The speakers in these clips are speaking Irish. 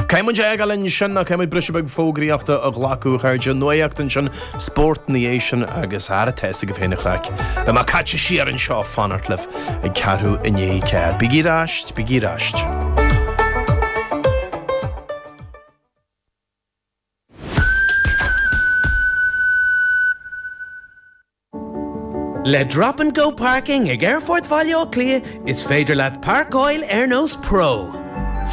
Tá muid, lena linn sin, tá muid ag gabháil briseadh beag fógraíochta a ghlacadh ardaigh nuaíocht ansin, spórt ina dhiaidh sin agus ar ais ag a féin an chraic. Beidh mé caite siar anseo ag fanacht libh ag ceathrú i ndiaidh a ceathair. Bígí ar ais, bígí ar ais. Le Drop and Go Parking ag Aerfort Bhaile Átha Cliath is féidir leat parcáil ar nós pro.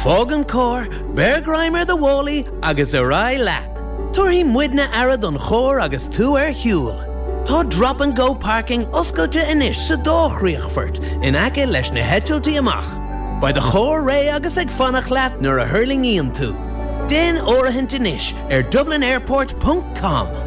Fág an carr, beir greim ar do mhálaí agus ar aghaidh leat. Tabharfaidh muidne aire don charr agus tú ar shiúl. Tá Drop and Go Parking oscailte anois sa dá chríochfort in aice leis na heitiltí amach. Beidh do charr réidh agus ag fanacht leat nuair a thuirlingíonn tú. Déan áirithint anois ar dublinairport.com.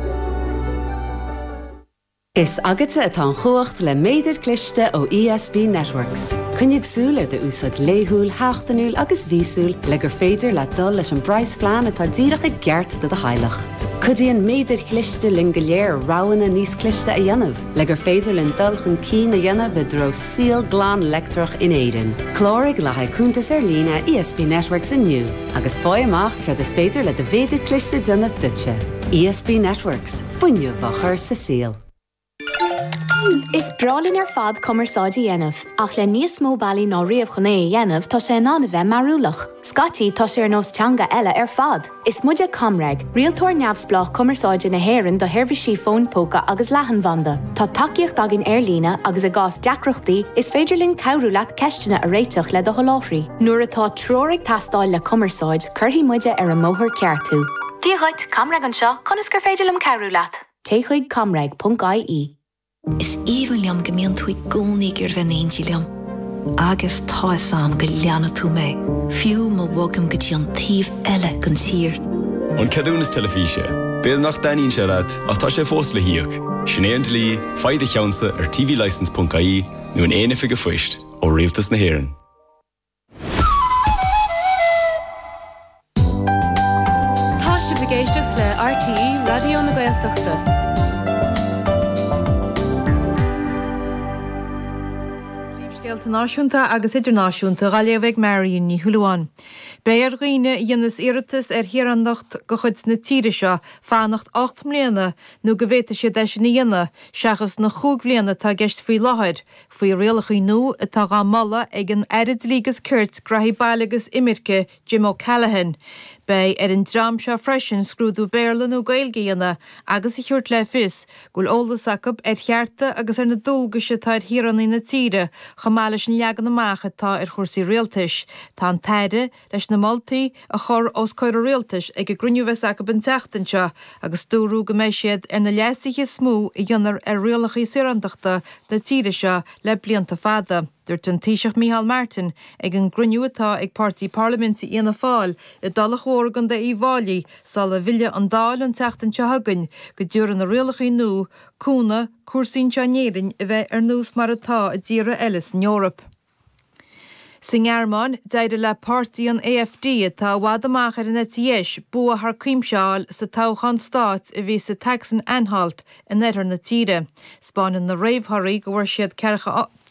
Is agatsa atá an chumhacht le méadar cliste ó ESB Networks. Coinnigh súil ar do úsáid laethúil, sheachtainiúil agus mhíosúil le gur féidir leat dul leis an bpraghas phlean atá díreach i gceart do do theaghlach. Cuidíonn méadair chliste linn go léir roghanna níos cliste a dhéanamh le gur féidir linn dul chun cinn a dhéanamh i dtreo saol glan leictreach in Éirinn. Cláraigh le haghaidh cuntas ar líne ESB Networks inniu agus faigh amach céard is féidir le do mhéadar cliste déanamh duitse. ESB Networks. fuinneamh a chur sa saol. Is breá linn ar fad cumarsáid a dhéanamh, ach le níos mó bealaí ná riamh chun é a dhéanamh tá sé in ann a bheith mearúlach. Scaití tá sé ar nós teanga eile ar fad! Is muide ComReg, rialtóir neamhspleách cumarsáide na hÉireann do sheirbhísí fóin póca agus leathanbhanda. Tá tacaíocht againn ar líne agus i gcás deacrachtaí is féidir linn cabhrú leat ceisteanna a réiteach le do sholáthraí. Nuair atá treoir ag teastáil le cumarsáid cuirfidh muide ar an mbóthar ceart thú. Dia dhuit, ComReg anseo, conas gur féidir liom cabhrú leat? Téigh chuig comreg.ie. Is aoibhinn liom go mbíonn tú i gcónaí ag iarraidh bheith in éindí liom. Agus tá fhios a'm go leanfaidh tú mé, fiú má bhogaim go dtí an taobh eile den tír. An ceadúnas teilifíse. B'fhéidir nach dtaitníonn sé leat, ach tá sé fós le híoc. Sin é an dlí, faigh do cheannsa ar tvlicence.ie nó in aon oifig a' phoist, ó Rialtas na hÉireann. Tá sibh ag éisteacht le RTÉ Raidió na Gaeltachta. Scéalta náisiúnta agus idirnáisiúnta á léamh ag Marion Ní Shúilleabháin. Beidh ar dhaoine a dhéanas iarratas ar shaoránacht de chuid na tíre seo fanacht ocht mbliana nó go bhféadfaidh siad é sin a dhéanamh, seachas na cúig bliana atá i gceist faoi láthair, Faoi rialacha nua atá á moladh ag an Aire Dlí agus Cirt, Gnaithí Baile agus Imirce, Jim O'Callaghan, beidh ar an dream seo freisin scrúdú Béarla nó Gaeilge a dhéanamh agus a thabhairt le fios go bhfuil eolas acu ar chearta agus ar na dualgais atá ar shaoránaigh na tíre chomh maith leis an leagan amach atá ar chúrsaí rialtais. Tá an tAire leis na moltaí a chur os comhair Rialtais ag an gcruinniú a bheas acu an tseachtain seo agus dúradh go mbeidh siad ar na leasuithe is mó a dhéanfar ar rialacha saorántachtá na tíre seo le blianta fada. Dúirt an Taoiseach Micheál Martin ag an gcruinniú atá ag páirtí parlaiminte Fhianna Fáil i dTulach Mhór i gContae Uíbh Fháilí sula bhfille an Dáil an tseachtain seo chugainn go dtiúrfadh na rialacha nua cúnamh cúrsaí anseo in Éirinn a bheith ar nós mar atá i dtíortha eile san Eoraip. Sa nGearmáin, d'éirigh le páirtí an AfD, atá i bhfad amach ar an eite dheis, bua thar cuimse a fháil sa toghchán stáit a bhí sa tSacsain-Anhalt in oirthear na tíre. 'Spáineann na réamhthorthaí go bhfuair siad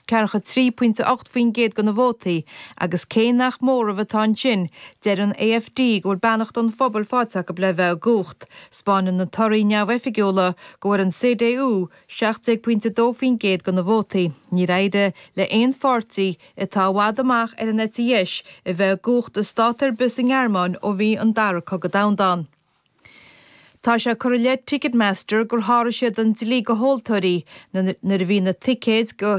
43.8% de na vótaí agus cé nach móramh atá ansin, deir an AfD go bhfuil beannacht an phobail faighte acu le bheith i gcumhacht. 'Spáineann na torthaí neamhoifigiúla go bhfuair an CDU, 17.2% de na vótaí. Níor éirigh le haon pháirtí atá i bhfad amach ar an eite dheis a bheith i gcumhacht i stát ar bith sa nGearmáin ó bhí an Dara Cogadh Domhanda ann. Tá sé curtha i leith Ticketmaster gur sháraigh siad an dlí do thomhaltóirí nuair a bhí na ticéid go